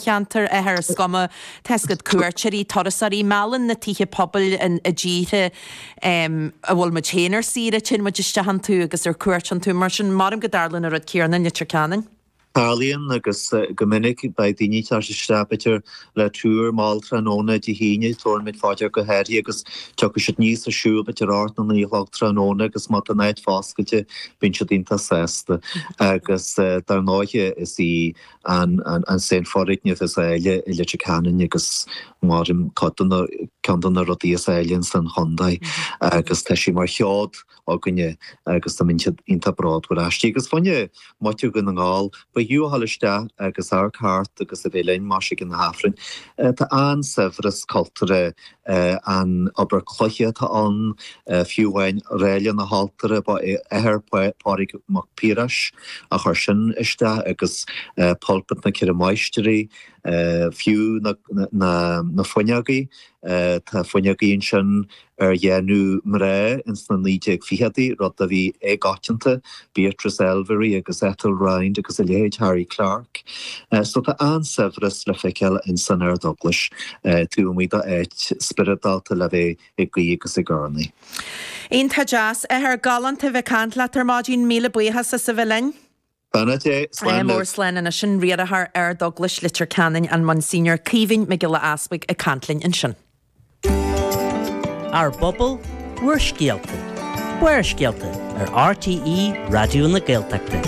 cheantar áithrid. Is cuma, tá's agat, cuairteoirí, turasóirí, meallann na tithe pobail i dtíortha a bhfuil muid féin ar saoire, téann muid isteach iontu agus ar cuairt iontu. Mar sin, maraim go dtarlaíonn an rud céarna in Leitir Ceanainn. Tarlaíonn, agus go minic. Beidh daoine ag teacht isteach, b'fhéidir, le túr mall tráthnóna Dé hAoine, déarfaidh muid, faire go háirithe agus tiocfaidh siad aníos ar siúl, b'fhéidir, ocht nó naoi a chlog tráthnóna agus má tá an áit foscailte, bíonn siad iontach sásta. Agus dar ndóiche, is í an sean foirgneamh is áille i Leitir Ceanainn agus maraim cuid den, ceann de na rudaí is áille in san chontae agus tá sé mar sheod againne agus táimid iontach bródúil aisti. Agus fiú an taobh amuigh de Dhún na nGall, ba fhiú a ghoil isteach agus amharc thart agus a bheith linn, más ag an Aifreann. Tá an-saibhreas cultúrtha An obair cloiche atá ann, fiú amháin, Ráille na hAltaire, ba é athair Phádraig Mac Piarais a chuir sin isteach, agus Pulpit na Ceithre Máistrí. Fiú na fuinneogaí, tá fuinneogaí ansin ar dhéanamh mná ins na 1920idí, rud a bhí éagoitianta Beatrice Elvery agus Ethel Rhind agus a leithéid, Harry Clarke. So tá an-saibhreas le feiceáil ins an Ardeaglais, taobh amuigh d'áit spioradálta le bheith ag guí agus ag urnaí. Iontach deas. Athair, galánta a bheith ag caint leat ar maidin. Míle buíochas as a bheith linn. Slán leat. Slán libh. Mór slán anois sin. Riarthóir Ardeaglais Leitir Ceanainn, an Monsignor Caoimhín Mac Giolla Easpaig ag caint linn ansin. Ár bpobal, bhur scéalta. Barrscéalta ar RTÉ Raidió na Gaeltachta.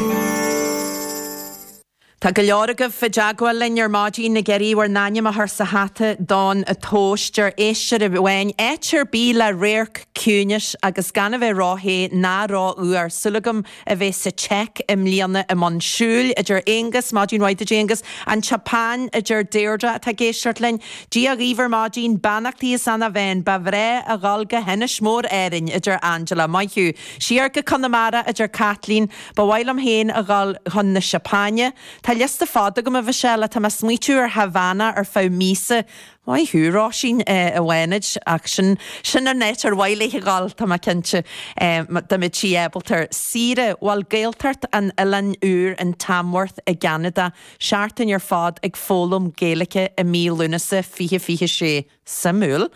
Tá go leor agaibh i dteagmháil linn ar maidín ag iarraidh bhur n-ainm a chur sa hata don tomhas. Deir éisteoir amháin, áit ar bith le radharc, ciúnas agus gan a bheith ró-the ná ró-fhuar, súil agam a bheith sa tSeic i mbliana i mbun siúil, a deir Aonghus. Maidin mhaith, a deir Aonghus. An tSeapáin, a deir Deirdre, atá ag éisteacht linn. Dia dhaoibh ar maidin. Beannachtaí as an Bheinn. Ba bhreá a dhul go hInis Mór Árann, a deir Angela. Maith thú. Siar go Conamara, a deir Kathleen. Ba mhaith liom féin a dhul chun na Seapáine. Tá liosta fada agam, a Mhichelle. Tá mé ag smaoitiú ar Havana ar feadh míosa. Maith thú, Róisín i bhFánaid, ach sin an áit ar mhaith léi a dhul, tá mé cinnte, dá mbeadh sí ábalta. Saoire, bhuel, Gaeltacht an Oileáin Úir in Tamworth i gCeanada, seachtain ar fad ag foghlaim Gaeilge i mí Lúnasa, fiche fiche sé. Suimiúil.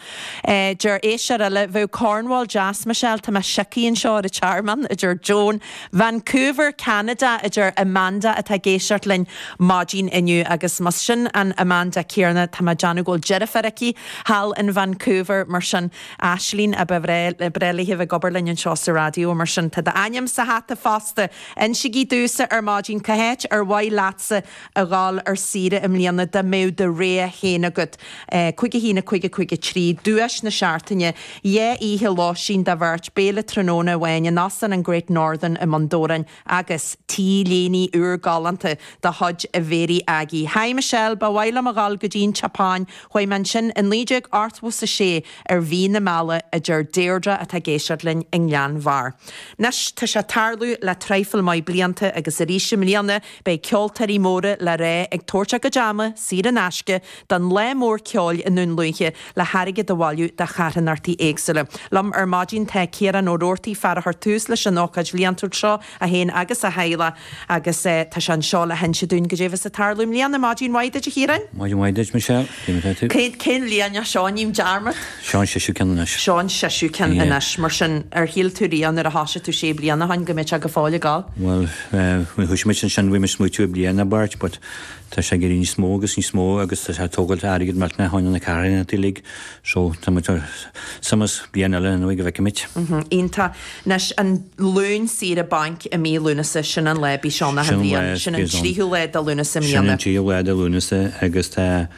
Deir éisteoir eile, Bheadh Cornwall deas, Michelle, tá mé sioctha anseo ar an Tearmann, a deir Joan, Vancouver, Ceanada, a deir Amanda atá ag éisteacht linn maidín inniu. Agus más sin an Amanda céanna, tá mé ag déanamh go bhfuil deirfiúr aici thall in Vancouver, mar sin, Aislínn a ba ghnách léi a bheith ag obair linn anseo sa raidió. Mar sin, tá d'ainm sa hata fosta. Insígí domhsa ar maidin cá háit ar mhaith leatsa a ghabháil ar saoire i mbliana dá mbeadh do rogha féin agat, Cúig a haon, a cúig, a cúig a trí, Duais na Seachtaine, Dhá oíche lóistín do bheirt, Béile tráthnóna amháin in Óstán an Great Northern i mBun Dobhráin agus T-léine úr galánta de chuid Bhéirí Aggie Hi Michelle, ba mhaith liom a ghabháil go dtí an tSeapáin, chuaigh mé ansin i naoi déag ochtó is a sé ar mhí na meala, a deir Deirdre atá ag éisteacht linn i nGleann Bharr. Anois tá sé ag tarlú le traidhfil maith blianta agus arís i mbliana Beidh ceoltóirí móra le rá ag tabhairt a gcuid ama, saor in aisce, don lá mór ceoil i nDún Lúiche le hairgead a bhailiú do charthanachtaí éagsúla. Liom ar maidin tá Ciarán Ó Roarty, fear a chuir tús leis an ócáid bhliantúil seo, é féin agus a theaghlach, agus tá sé anseo le hinse dúinn caidé bheas ag tarlú i mbliana. Maidin mhaith duit, a Chiaráin. Maidin mhaith duit, Michelle. Cén bhliain, rinne mé dearmad? Seán seisiú ceann anois. Seo an séú ceann anois. Mar sin, ar shíl tú riamh nuair a thosaigh tú sé bliana ó shin go mbeadh sé go fóill ag gabháil? Bhuel, nuair a thosaigh muid ansin bhí muid ag smaoitiú ar bliain nó beirt, but tá sé ag éirí níos mó agus níos mó agus tá sé ag tógáilt airgead maith fá choinne na carthanachtaí uilig so tá muid ag ag dul bliain eile anyway go bhfeicfimid. Iontach. Anois an Luan saoire bainc i mí Lúnasa, sin an lá a bíonn sé achan bhliain, sin an tríú lá de Lúnasa i mbliana. Sin an tríú lá de Lúnasa agus tá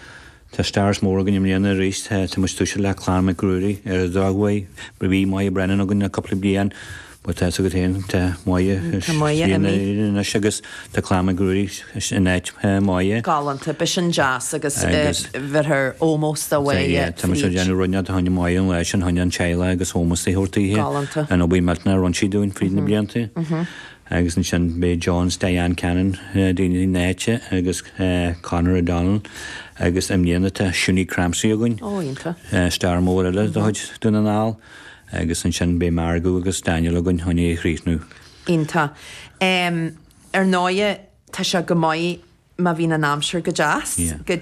tá stars mór againn i mbliana arís, tá tá muid ag toiseacht le Clann Mhic Ruairí ar ndóighe bhí bhí Moya Brennan againn le cúpla bliain but tá fhios agat fhéin tá Moya Tá Moya imithe anois agus Tá Clann Mhic Ruairí in áit Moya. galánta. Beidh sin deas agus bheirthear ómós do Moya fríd. Tá muid ag déanamh rud éigin fá choinne Moya an lá sin, fá choinne an teaghlaigh agus ómós a thabhairt daoithe. Galánta. An obair millteanach a rinn sí dúinn fríd na blianta. Agus ansin beidh John 's Diane Cannon daoine na háite agus Conor O'Donnell agus i mbliana tá Shunie Crampsey againn. Ó, iontach. Star mór eile de chuid Dún na nGall. Agus ansin beidh Margo agus Daniel againn, fá choinne a chríochnú. Iontach. Ar ndóighe, tá sé go maith má bhíonn an aimsir go deas. Yeah.